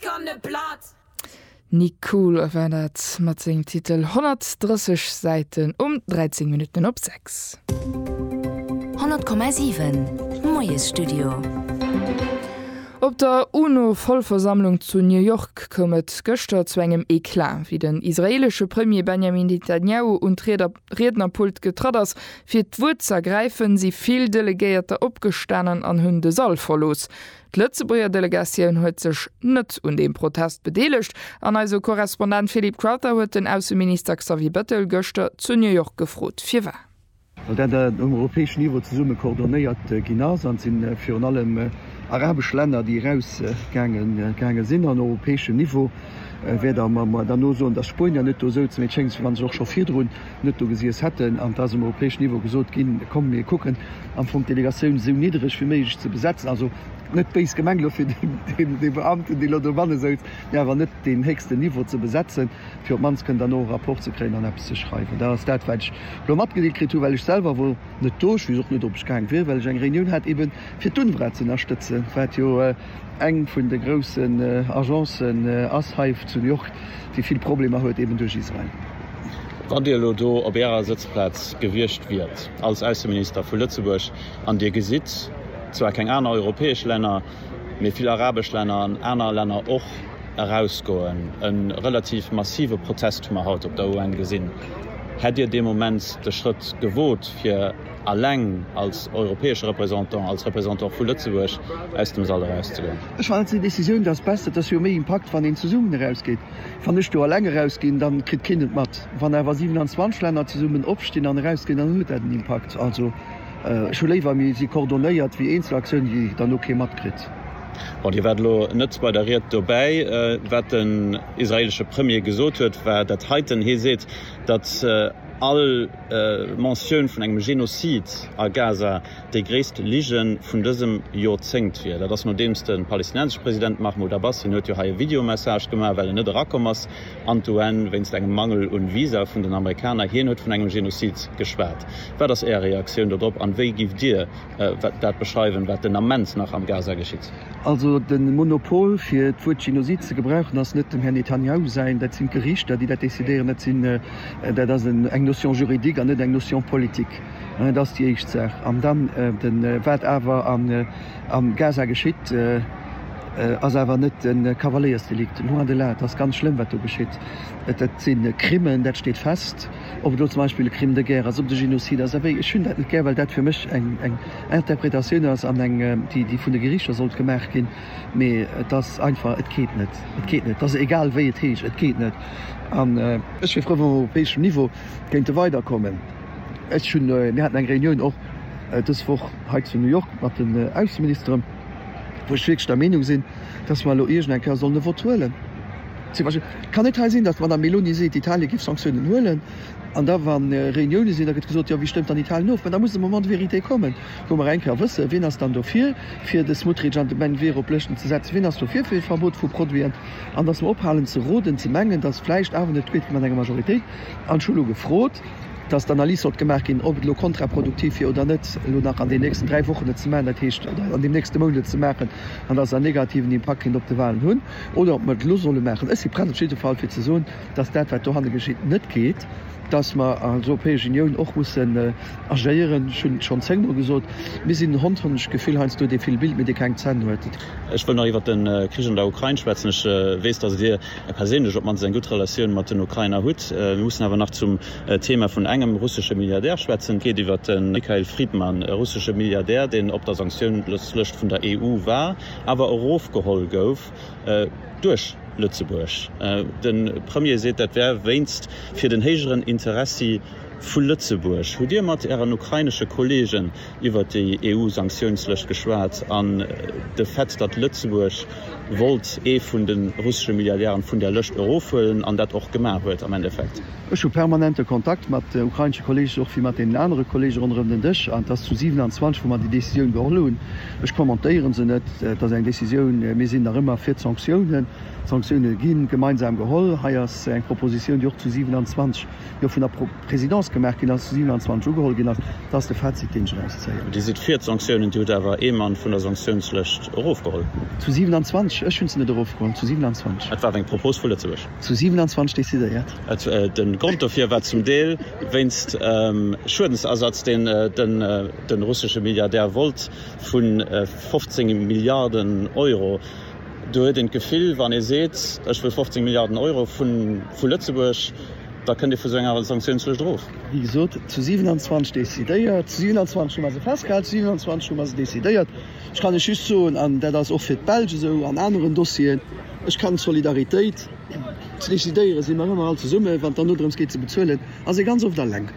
Kanne platt! Nik Cool war dat mat sengem Titel 130 Säiten um 13 Minutten op 6. 100,7 Moiesstudio. Op der UNO-Vollversammlung zu New York koum et gëschter zu engem Eclat, wéi den israeelesche Premier Benjamin Netanyahu un d'Riednerpult getratt ass, fir d'Wuert z'ergräifen, si vill Delegéierter opgestanen an hunn de Sall verlooss. D'Lëtzebuerger Delegatioun huet sech net un deem Protest bedeelegt an eise Korrespondent Philip Crowther huet den Ausseminister Xavier Bettel gëschter zu New York gefrot, firwat. Well dat um europäeschen Niveau zesumme coordonéiert ginn ass an et si virun allem arabesch Länner, déi erausgaange sinn. En europäeschen Niveau wäert awer dann och soen, datt Spuenier net do souzen, mee et schéngt esou, wa se och scho virdrun net do gesiess hätten, an et ass um europäeschen Niveau gesot ginn, komm mir kucken am Fong d'Delegatioun esou niddreg wéi méiglech ze besetzen. Also net béis gemengt elo fir dee Beamten, dee elo dobanne souz, mee awer net deen héchsten Niveau ze besetzen, fir op d'mannst kënnen dann no e Rapport ze kréien an eppes ze schreiwen. Dat ass dat, wat ech elo matgedeelt kritt hunn, well ech selwer wor net do. Ech weess och net, ob ech gaang wier, well ech eng Reunioun hat, eeben fir d'UNRWA ze ënnerstëtzen, wat jo, Eng vun de groussen Agencen ass Hive zu New York, déi vill Problemer huet, eben duerch Israel. Wann Dir elo do op Ärer Sëtzplaz gewiescht wiert als Ausseminister vu Lëtzebuerg an Dir gesitt zwar keng aner europäesch Länner, mee vill arabesch Länner an aner Länner och erausgoen, e relativ massive Protest hu mer haut op der UN gesinn, hätt Dir dee Moment de Schrëtt gewot, fir. eleng als europäesche Représentant, als Représentant vu Lëtzebuerg aus dem Sall erauszegoen. Ech fannen, dass déi Décisioun, dass besser, dass jo méi Impakt, wann een zesummen erausgeet. Wann ech do eleng erausginn, da kritt keen et mat. Wann awer 27 Länner zesummen opstinn an erausginn, dann huet dat en Impakt. Also, ech hu léiwer, mir si coordonéiert, wéi Eenzelaktiounen, déi dann och kee matkritt. Bon, Dir waart elo net bei der Ried dobäi. Wat den israeelesche Premier gesot huet, war dat heiten. Hie seet, datt. All Mentioun vun engem Genozid a Gaza, déi gréisst Lige vun dësem Jorzéngt wier. Dat ass nodeems de palestinenseschen President Mahmoud Abbas, hien huet jo hei e Videomessage gemaach, well en net erakomm ass an d'UN wéinst engem Mangel un Visa vun den Amerikaner, hien huet vun engem Genozid geschwat. Wat ass Äer Reaktioun dodrop an wéi giff Dir Wat dat beschreiwen, wat den Ament nach am Gaza geschitt. Also de Monopol fir d'Wuert Genozid ze gebrauchen ass net dem Här Netanjahu säin. Dat sinn d'Gerichter déi dat decidéieren. Dat sinn, dat ass eng Notion juridique an net eng Notion politique. Dat ass déi éischt Saach. An dann de wat awer am Gaza geschitt ass awer net e Kavaléiersdelikt, loin de là. Et ass ganz schlëmm wat do geschitt. Dat sinn Krimmen, dat steet fest. ob et elo zum Beispill e Crime de guerre ass, ob et e Genocide ass, abéi ech hunn dat net gär, well dat fir mech eng Interpretatioun ass an eng, déi vun de Gerichter sollt gemaach ginn, mee et ass einfach, et geet net, et geet net, et ass egal wéi et heescht, et geet net. An. Ech wier frou, wa mer op europäeschem Niveau kéinte weiderkommen. Ech hunn, mir haten eng Reunioun och dës Woch hei zu New York mat den Ausseministeren, wou ech wierklech der Meenung sinn, dass mer elo iergend eng Kéier sollen e Vott huelen, Zum Beispill, et kann net hei sinn, datt d'Madame Meloni seet, Italien géif Sanktiounen huelen, an da wa Reuniounen sinn, da gëtt gesot, jo, wie stëmmt dann Italien of? Mä da muss de Moment de vérité kommen, wou mer eng Kéier wëssen, wien ass dann dofir, fir de Smotrich an de Menvero op Lëschten ze setzen, wien ass dofir fir e Verbot vu Produiten, an datt mer ophalen ze roden, ze mengen, datt vläicht awer net gutt mat enger Majoritéit. An ech hu elo gefrot, datt d'Analys sollt gemaach ginn, ob et elo kontraproduktiv wier oder net, elo nach an deenen nächsten dräi Wochen et ze maachen, dat heescht, oder an deem nächste Mount et ze maachen, an datt et en negativen Impakt kéint op de Wahlen hunn. oder ob mer et elo solle maachen. Ech si prett op jidde Fall, fir ze soen, dass dat, wat dohanne geschitt, net geet, dass mer als Europäesch Unioun och mussen agéieren. Ech hunn et schonn zéngmol gesot, Mir sinn en Hond, hunn ech d'Gefill, heiansdo, dee vill Bild, mee dee keng Zänn huet. Ech wëll nach iwwert de Krich an der Ukrain schwätzen. Ech weess, dass Dir perséinlech op d'mannst eng gutt Relatioun mat den Ukrainer hutt. Mir mussen awer nach zum Thema vun engem russesche Milliardär schwätzen. Et geet iwwert de Mikhail Fridman, e russesche Milliardär, deen op der Sanktiounslëscht vun der EU war. awer erofgeholl gouf duerch Lëtzebuerg. De Premier seet, dat wär wéinst fir den héijeren Interessi vu Lëtzebuerg. Hutt Dir mat Ären ukrainesche Kollegen iwwert déi EU-Sanktiounslëscht geschwat an de Fait, datt Lëtzebuerg wollt ee vun de russesche Milliardären vun där Lëscht erofhuelen an dat och gemaach huet am Endeffekt? Ech hu permanente Kontakt mat ukrainesche Kollegen, och wéi mat deenen anere Kollege ronderëm den Dësch, an et ass zu 27, wou mer déi Decisioun geholl hunn. Ech kommentéieren se net. Et ass eng Décisioun. Mir sinn nach ëmmer fir d'Sanktiounen. D'Sanktiounen gi gemeinsam geholl. Hei ass eng Propositioun, déi och zu 27 jo vun der Présidence gemaach ginn ass, zu 27 ugeholl ginn ass. Dat ass de Fazit, deen ech eraus zéien. Dir sidd fir d'Sanktiounen. Dir hutt awer ee Mann vun der Sanktiounslëscht erofgeholl. Zu 27? Ech hunn se net erofgeholl. Zu 27. Dat war eng Propos vu Lëtzebuerg. Zu 27 decidéiert. De Grond dofir war zum Deel wéinst Schuedensersatz, deen de russesche Milliardär wollt, vu 15 Milliarden Euro. Do huet een d'Gefill, wann ee seet, ech wëll 15 Milliarden Euro vu Lëtzebuerg, da kënnt ee vu sou enger Sanktioun zu Esch erof. Wéi gesot, zu 27 decidéiert. Zu 27 hu mer se festgehalen, zu 27 hu mer se decidéiert. Ech kann lech just soen, an dat ass och fir d'Belsch esou an aneren Dossieren, Ech kann d'Solidaritéit decidéieren, si mer ëmmer all zesummen, wann et dann dodrëms geet, se bezuelen, ass ee ganz oft eleng.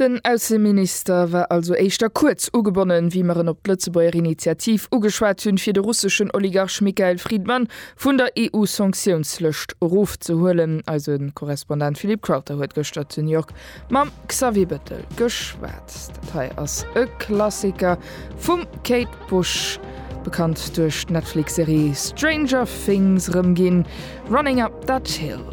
Den Ausseminister war also éischter kuerz ugebonnen, wéi mer en op d'Lëtzebuerger Initiativ ugeschwat hunn, fir de russeschen Oligarch Mikhail Fridman vun der EU-Sanktiounslëscht erofzehuelen. Eise Korrespondent Philippe Crowther huet gëschter zu New York Mam Xavier Bëttel geschwat. Dat hei ass e Klassiker vum Kate Bush, bekannt duerch d'Netflix-Serie Stranger Things, erëmginn, Running Up That Hill.